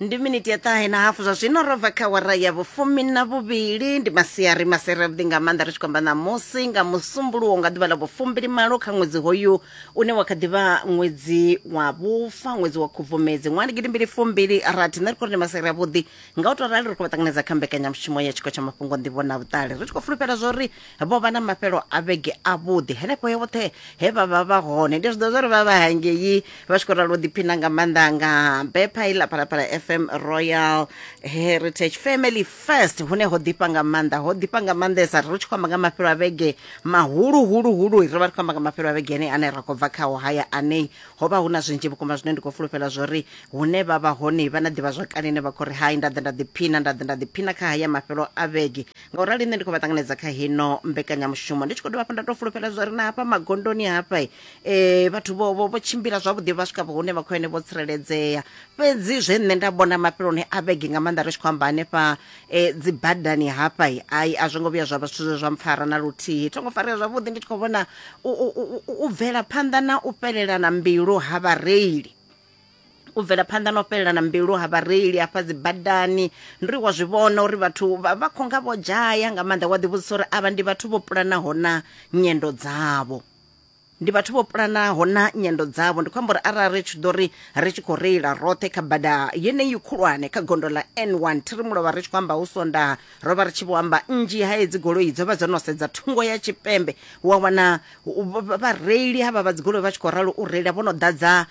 ndi miniti ya ṱahe na hafu zwa zwino ro bva kha wara ya vhufumi na vhuvhili ndi masiari masere avhuḓi nga maanḓa ri tshi khou amba ṋamusi nga musumbuluwo nga ḓuvha ḽa vhufumbili malo kha ṅwedzi hoyu une wa kha ḓivha ṅwedzi wa vhufa ṅwedzi wa khubvumedzi ṅwaha ndi gidimbili fumbili rathi nṋe ri khou ri ndi masere avhuḓi nga u tou rali ri khou vha ṱanganedza kha mbekanyamushumo ya tshiko tsha mafhungo nḓivho na vhuṱali ri tshi khou fulufhela zwa uri vho vha na mafhelo a vhege avhuḓi henefho he vhoṱhe he vha vha vha hone ndi zwiḓo zwa ri vha vha hangei vha tshi khou ralo ḓiphina nga maanḓa nga bepha iḽa phalaphala fm royal heritage family first hune ho ḓifha nga maanḓa ho ḓifha nga maanḓesa ri tshi khou amba nga mafhelo a vhege mahulu hulu hulu ri vha ri khou amba nga mafhelo a vhege ane ane ra khou bva khao haya anei ho vha hu na zwinzhi vhukuma zwine ndi khou fulufhela zwo ri hune vha vha hone vha na ḓivha zwakale ine vha khou ri hai nda ḓa nda ḓiphina nda ḓa nda ḓiphina kha haya mafhelo a vhege ngaurali nṋe ndi khou vha ṱanganedza kha hino mbekanyamushumo ndi tshi khou dovha hafhu nda tou fulufhela zwa ri na hafha magondoni hafha um vhathu vho vho tshimbila zwavhuḓi vha swika hune vha khou ene vho tsireledzea fhedzi zwe nṋe nda vhona mafheloni a vhege nga maanḓa ri tshi khou amba hanefha um dzi badani hafha ai a zwo ngo vhuya zwa vha zwithu zwe zwa mpfara na luthihi tho ngo farea zwavhuḓi ndi tshi khou vhona u bvela phanḓa na u fhelelana mbilu ha vhareili u bvela phanḓa na u fhelelana mbilu ha vhareili hafha dzi badani ndi wa zwi vhona uri vhathu vha vha khou nga vho dzhaya nga maanḓa wa ḓivhudzisa uri avha ndi vhathu vho pulanaho na nyendo dzavho ndi vhathu vho pulanaho na nyendo dzavho ndi khou amba uri arali ri tshi ḓo ri ri tshi khou reila roṱhe kha bada yeneyi khulwane kha gondo ḽa n1 thi ri mulovha ri tshi khou amba hu sondaha ro vha ri tshi vho amba nnzhi ha hedzi goloi dzo vha dzo no sedza thungo ya tshipembe wa wana u- vha- vhareili havha vha dzigoloi vha tshi khou ralo u reila vho no ḓadza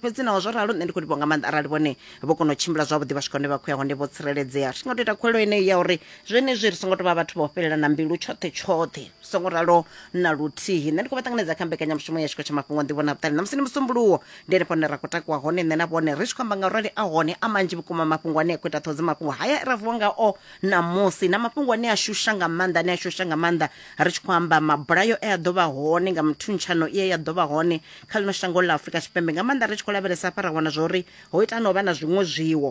Fhedzi naho zwo ralo, nṋe ndi khou livhuwa nga maanḓa arali vhone vho kona u tshimbila zwavhuḓi vha swika hune vha khou ya hone vho tsireledzea. Ri nga tou ita khuwelo yeneyo ya uri zwenezwi ri songo tou vha vhathu vha u fhelelana mbilu tshoṱhe tshoṱhe. Zwi songo ralo na luthihi. Nṋe ndi khou vha ṱanganedza kha mbekanyamushumo ya Tshiko tsha Mafhungo a Nḓivho na Vhuṱali. Ṋamusi ndi Musumbuluwo, ndi henefho hune ra khou takuwa hone nṋe na vhone ri tshi khou amba nga urali a hone a manzhi vhukuma mafhungo ane a khou ita ṱhoho dza mafhungo haya e ra vuwa ngao ṋamusi na mafhungo ane a shusha nga maanḓa ane a shusha nga maanḓa ri tshi khou amba mabulayo e a ḓo vha hone nga muthuntsha tshumisano i ya ḓo vha hone kha ḽino shango ḽa afurika tshipembe nga maanḓa ri tshi khou lavhelesa hafha ra wana zwa uri ho ita no vha na zwiṅwe zwiwo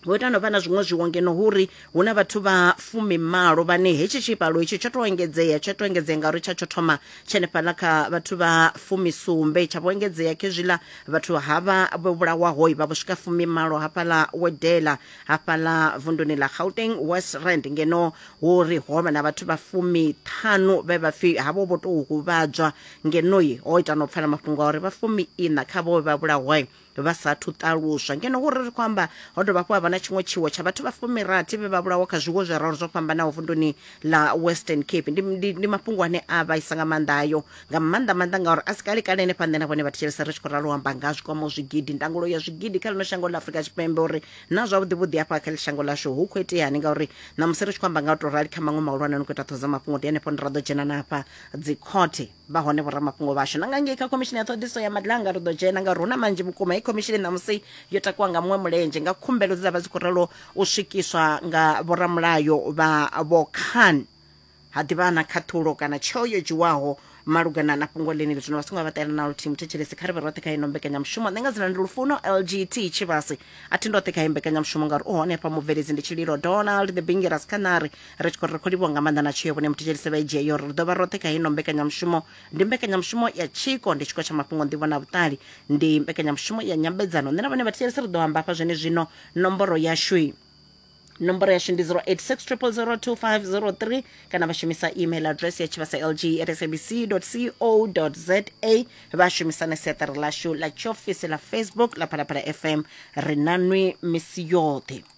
ho ita no vha na zwiṅwe zwiwo ngeno hu ri hu na vhathu vha fumimalo vhane hetshi tshivhalo hetshi tsho to engedzea tsho to engedzea ngauri tsha tsho thoma tshenefhaḽa kha vhathu vha fumisumbe tsha vho engedzea khezwiḽa vhathu havha vho vhulawaho vha vho swika fumimalo hafhaḽa wedela hafhaḽa vunduni ḽa gauteng west rand ngeno hu ri ho vha na vhathu vha fumiṱhanu vhe vha pfhi havho vho tou huvhadzwa ngenoyi o ita no pfala mafhungo a uri vha fumi ina kha vhowe vha vhulahoi vha sathu ṱaluswa ngeno hu ri ri khou amba ho dovha hafhu ha vha na tshiṅwe tshiwo tsha vhathu vha fumirathi vhe vha vhulawa kha zwiwo zwiraru zwo fhambanaho vunduni ḽa western cape ndi, ndi, ndi mafhungo ane a vhaisa nga maanḓa ayo nga maanḓa maanḓa ngauri a si kale kale henefha nṋe na vhone vhathetshelesa ri tshi khou ralo amba nga zwikwamaho zwigidi ndangulo ya zwigidi kha ḽino shango ḽa afurika tshipembe uri na zwavhuḓi vhuḓi hafha kha shango lashu hu khou iteani ngauri na musi ri tshi khou amba nga u tou rali kha maṅwe mahulwane no khou ita ṱhoho dza mafhungo ndi henefho ndi ra ḓo dzhena na hafha dzikhothe vha hone vhoramafhungo vhashu na nga ngei kha khomishini ya ṱhoḓiso ya madlanga ri ḓo dzhena nga runa manzhi vhukuma hei khomishini ṋamusi yo takuwa nga muṅwe mulenzhe nga khumbelo dze dza vha dzi khou ralo u swikiswa nga vhoramulayo vha vhokhan ha ḓivha na khaṱhulo kana tsheo yo dzhiwaho malugana na fhungo ḽeneli zwino vha songo vha ṱela na luthihi muthetshelesi kha ri vhe roṱhe kha ino mbekanyamushumo nṋe nga dzina ndi lufuno lgt tshivhasi a thi ndoṱhe kha iyi mbekanyamushumo ngauri u hone hafha mubveledzi ndi tshililo donald the bingeras khanari ri tshi khou ri khou livhuwa nga maanḓa na tsheo vhone muthetshelise vha i dzhia yo ri ri dovha roṱhe kha ino mbekanyamushumo ndi mbekanyamushumo ya tshiko ndi tshiko tsha mafhungo nḓivho na vhuṱali ndi mbekanyamushumo ya nyambedzano nṋe na vhone vhathetshelisi ri ḓo amba hafha zwene zwino nomboro yashui nomboro yashu ndi 0860002503 kana vha shumisa email address ya tshivhasa lg at sabc co za vha shumisa na siaṱari ḽashu ḽa tshiofisi ḽa facebook ḽa phalaphala fm ri na nwi misi yoṱhe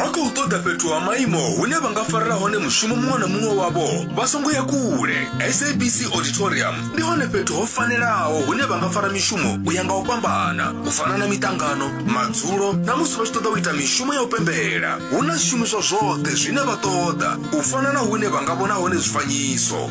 vha khou ṱoḓa fhethu ha maimo hune vha nga farela hone mushumo muṅwe na muṅwe wavho vha songo ya kule sabc auditorium ndi hone fhethu ho fanelaho hune vha nga fara mishumo u ya nga u fhambana u fana na miṱangano madzulo na musi vha tshi ṱoḓa u ita mishumo ya u pembela hu na zwishumiswa zwoṱhe zwine vha ṱoḓa u fana na hune vha nga vhona hone zwifanyiso